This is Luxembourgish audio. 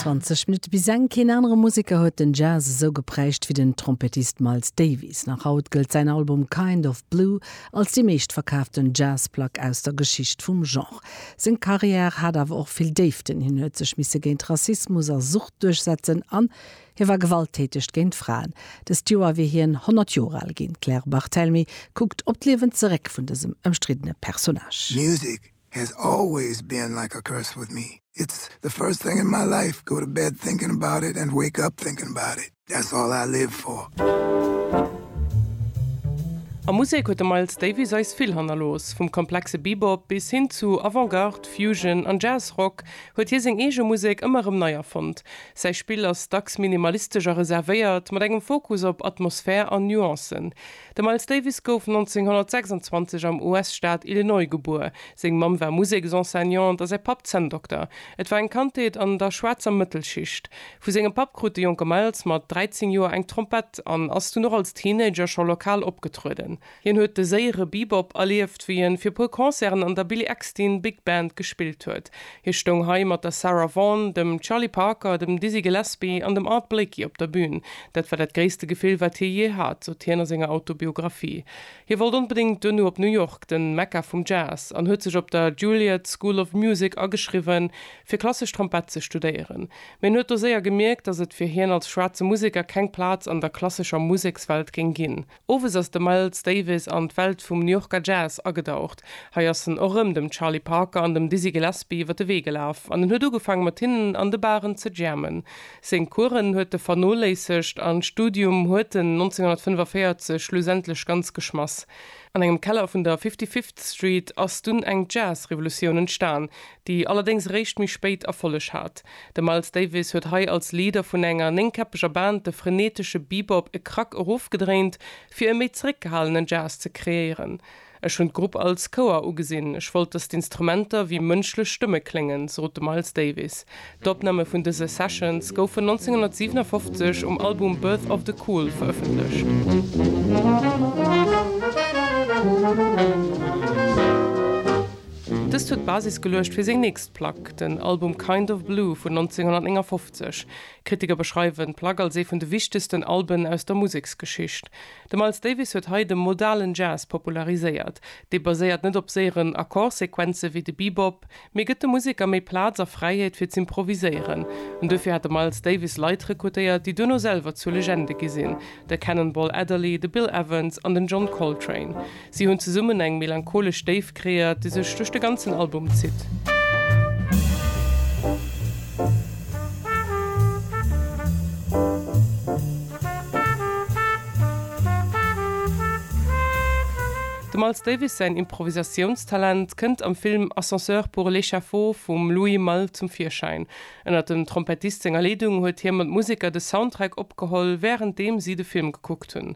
20 Minutte bis eng, Keen anere Museker huet den Jazz esou geprägt wéi den Trompettist Miles Davis. Nach haut gëllt säin Album Kind of Blue als déi meeschtverkaaften Jazzplack aus der Geschicht vum Genre. Seng Karriär hat awer och vill Déiften, Hien huet sech misse géint Rassismus a Sucht duerchsetzen an hie war gewalttäteg géint Fraen. Dëst Joer wier hien 100 Joer al ginn. D'Claire Barthelmy kuckt op d'Liewen zeréck vun dësem ëmstriddene Personnage. Music Has always been like a curse with me, it's the first thing in my life, go to bed thinking about it and wake up thinking about it, that's all I live for. A Musek huet de Miles Davis eis vill hannerlooss. Vum komplexe Bebop bis hin zu Avant-Garde, Fusion an Jazz-Rock huet hie seng eege Musek ëmmer erëm nei erfonnt. Säi Spill ass dacks minimalistesch a reservéiert, mat engem Fokus op Atmosphär an Nuancen. De Miles Davis gouf 1926 am US-Staat Illinois gebuer. Seng Mamm war Museksenseignante a säi Papp Zänndokter. Et war eng Kandheet an der schwaarzer Mëttelschicht. Vu sengem Papp krut de jonke Miles mat 13 Joer eng Trompett an ass dunn och als Teenager scho lokal opgetrueden. Hien huet de séiere Bebop erlieft, wéi en fir e puer Concerten an der Billy Eckstine Big Band gespillt huet. Hie stoung hei mat der Sarah Vaughan, dem Charlie Parker, dem Dizzy Gillespie an dem Art Blakey op der Bün. Dat war dat gréisste Gefill, wat hie jee hat, sot hien a senger Autobiographie. Hie wollt onbedéngt duerno op New York, den Mekka vum Jazz, an huet sech op der Juilliard School of Music ageschriwwen, fir klassesch Trompett ze studéieren. Mee en huet do séier gemierkt, datt et fir hien als schwaarze Museker keng Plaz an der klassescher Musekswelt géing ginn. Owes ass de Miles Davis an d'Welt vum New Yorker Jazz agedaucht. Hei ass en och rëm dem Charlie Parker an dem Dizzy Gillespie iwwer de Wee gelaf an en huet ugefaang mat hinnen an de Baren ze jammen. Seng Coursen huet e vernoléissegt an d'Studium huet en 1945 schlussendlech ganz geschmass. An engem Keller vun der Fifty-Fifth Street ass dunn eng Jazz-Revolutioun entstan, déi allerdéngs eréischt méi spéit Erfolleg hat. De Miles Davis huet hei als Leader vun enger néngkäppeger Band de frenetesche Bebop e Krack erofgedréint, fir e méi zeréckgehalenen Jazz ze kreéieren. Ech hunn d'Grupp als Chouer ugesinn, ech wollt, datt d'Instrumenter wéi mënschlech Stëmme kléngen, sot de Miles Davis. D'Opname vun dëse Sessions goufen 1957 um Album Birth of the Cool verëffentlecht. Dëst huet d'Basis geluecht fir seng nächst Plack, den Album Kind of Blue vun 1959. Kritiker beschreiwen d'Plack als ee vun de wichtegsten Alben aus der Museksgeschicht. De Miles Davis huet hei de modalen Jazz populariséiert. Dee baséiert net op séieren Akkordsequenze wéi de Bebop, Mee gëtt de Museker méi Plaz a Fräiheet fir z'improviséieren. An duerfir hat de Miles Davis Leit rekrutéiert, déi duerno selwer zu Legende gi sinn, de Cannonball Adderley, de Bill Evans an den John Coltrane. Si hunn zesummen eng melancholesch Déift kreéiert, déi sech duerch de ganzen Album zitt. Dem Miles Davis säin Improvisatiounstalent kënnt am Film Ascenseur pour l'échafaud vum Louis Malle zum Virschäin. Ënnert dem Trompettist senger Leedung huet hie mat Museker de Soundtrack opgeholl, wärenddeem si de Film gekuckt hunn.